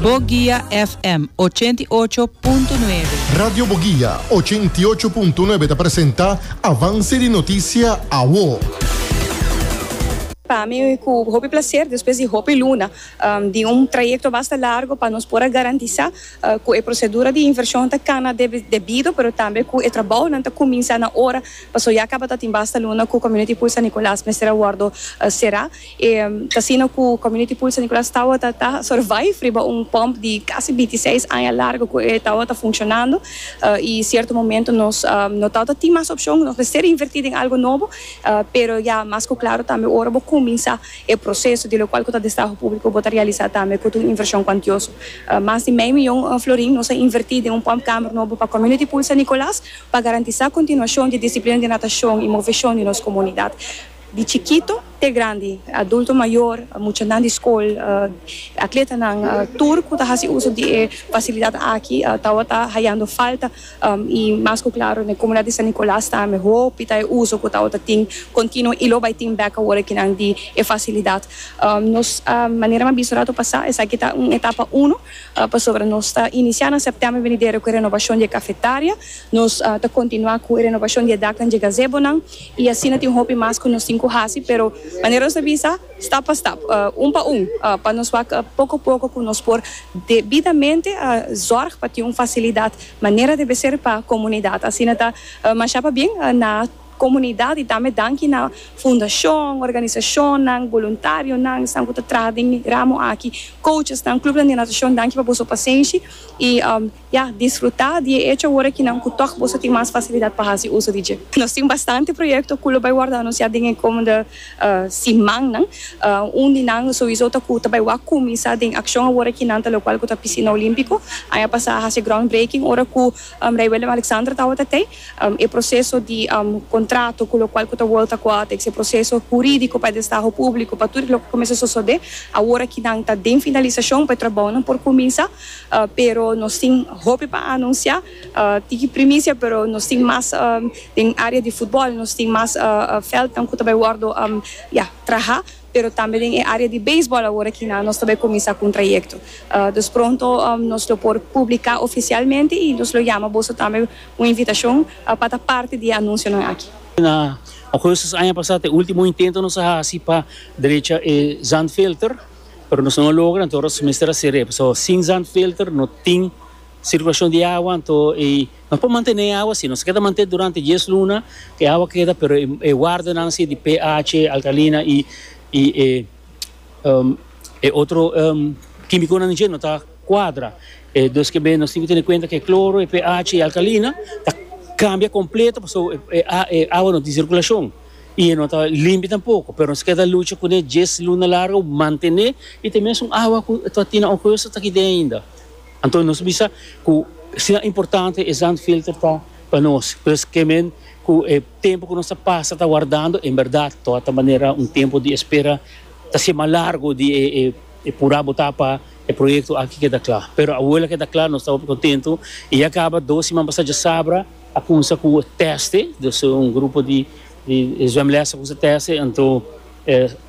Boguia FM 88.9. Radio Boguia 88.9 ta presenta Avance di Noticia Awo. Pa mi cu hopi placer despues di hopi luna di un trayecto basta largo pa nos por a garantisa cu e procedura di inversion ta cana debido pero tambe cu e trabaonan ta cuminsa na ora pasobra ya cabatin basta luna cu Community Pool San Nicolas mester a wordo cera. E ta asina ku Community Pool San Nicolas tawata ta survive riba un pump di kasi binti seis aña largu ku e tawata funshonando i sierto momento nos no tawata tin mas opshon, nos mester invertí den algu nobo, pero ya mas ku klaru tambe ora bo kuminsá e proseso di lokual ku ta destaho públiko bo ta realisá tambe ku ta un invershon kuantioso. Mas di mei mion florin nos a invertí den un pump kamer nobo pa Community Pool San Nicolas pa garantisá kontinuashon di disiplina di natashon i moveshon di nos komunidat. Di chikito te grandi, adulto mayor, muchanan di skol, atletanan, tur ku ta hasi uso di e fasilidat aki tabata hayando falta i mas ku klaro na e komunidat di San Nikolas tambe hopi ta e uso ku tabata tin kontinuo i lo bai tin bek awor e kinan di e fasilidat. Nos manera mi a bisa rato pasá esaki ta un etapa uno pasobra nos ta inisiá na sèptèmber venidero ku e renobashon di e kafetaria, nos ta kontinuá ku e renobashon di e daknan di e gazebonan. I asina tin hopi mas ku nos tin ku hasi, pero manera nos ta bisa, stap pa stap, un pa un, pa nos wak poko poko ku nos por debidamente zòrg pa tin un fasilidat manera debe ser pa komunidat. Asina ta masha pabien na komunidat i tambe danki na fundashon, organisashonnan, boluntarionan, esnan ku ta traha den e ramo aki, kouchesnan, klupnan di natashon, danki pa boso pasenshi i. Ya, disfrutá di e echo awor aki nan ku tòg boso tin mas fasilidat pa hasi uso di dje. Nos tin bastante proyekto ku lo bai wòrdu anunsiá den e komende simannan. Un di nan sowisou ta ku ta bai wak kuminsá den akshon awor aki nan ta lokual ku ta Pisina Olímpiko. Aña pasá a hasi e groundbreaking ora ku Rei Willem-Alexander tabata ta ei. E proseso di kontrato ku lokual ku ta World Aquatics, e proseso hurídiko pa e destaho públiko, pa tur loke ta kuminsá sosodé awor aki nan ta den finalisashon pa e trabounan por kuminsá. Pero nos tin hopi pa anunsiá. Tiki primisia pero nos tin mas den área di futbòl, nos tin mas vèldnan ku ta bai wòrdu ya trahá, pero tambe den e área di beisbòl awor aki nan nos ta bai kuminsá ku un trayekto. Dus pronto nos lo por publiká ofisialmente i nos lo yama boso tambe un invitashon pa ta parti di e anunsionan aki. Na Augustus aña pasá ta e último intento nos a hasi pa drecha e zandfilter. pero nos no a logra anto nos mester haci rep so sin zandfilter no tin circulacion di awa anto y nos por mantene e awa asi nos a keda manten durante dies luna e awa keda pero e wardenan si di PH alkalina y e otro kimiconan dje no ta cuadra dus kebe nos tin ki tene cuenta ke cloro y PH y alkalina ta cambia completo pasobra e awa no tin circulacion. i e no ta limpi tampoko, pero nos ta keda lucha kuné djes luna largu, mantené i te mesun awa ku ta batina na un kueso ta kid'é ainda. Anto nos bisa ku asina importante e zandfilter ta pa nos, pues ke men ku e tempu ku nos ta pasa ta wardando en bèrdat ta wòrdu manera un tempu di espera ta siña mas largu di e purá botá pa e proyekto aki keda kla. Pero awor el a keda kla nos ta hopi kontentu i ya kaba dos siman pasá djasabra. A kumsa ku tèste, dus un grupo di zwemlès a kumsa tèste, anto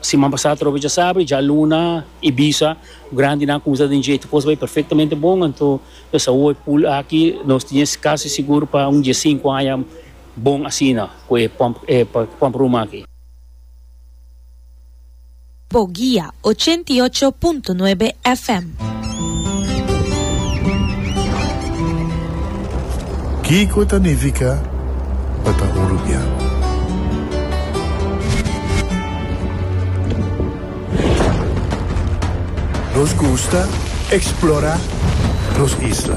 siman pasá atrò bo djasabra djaluna, ibiza, grandinan kumsa den dje, tur kos bai perfektamente bon, anto nos a woi pul aki nos tin es kasi sigur pa un dje sinku aña bon asina ku e pòmp ruman aki. Bo guia, ochenta i ocho punto nuebe FM. Kiko ta nifica pa ta un rubian? Nos gusta explora nos isla.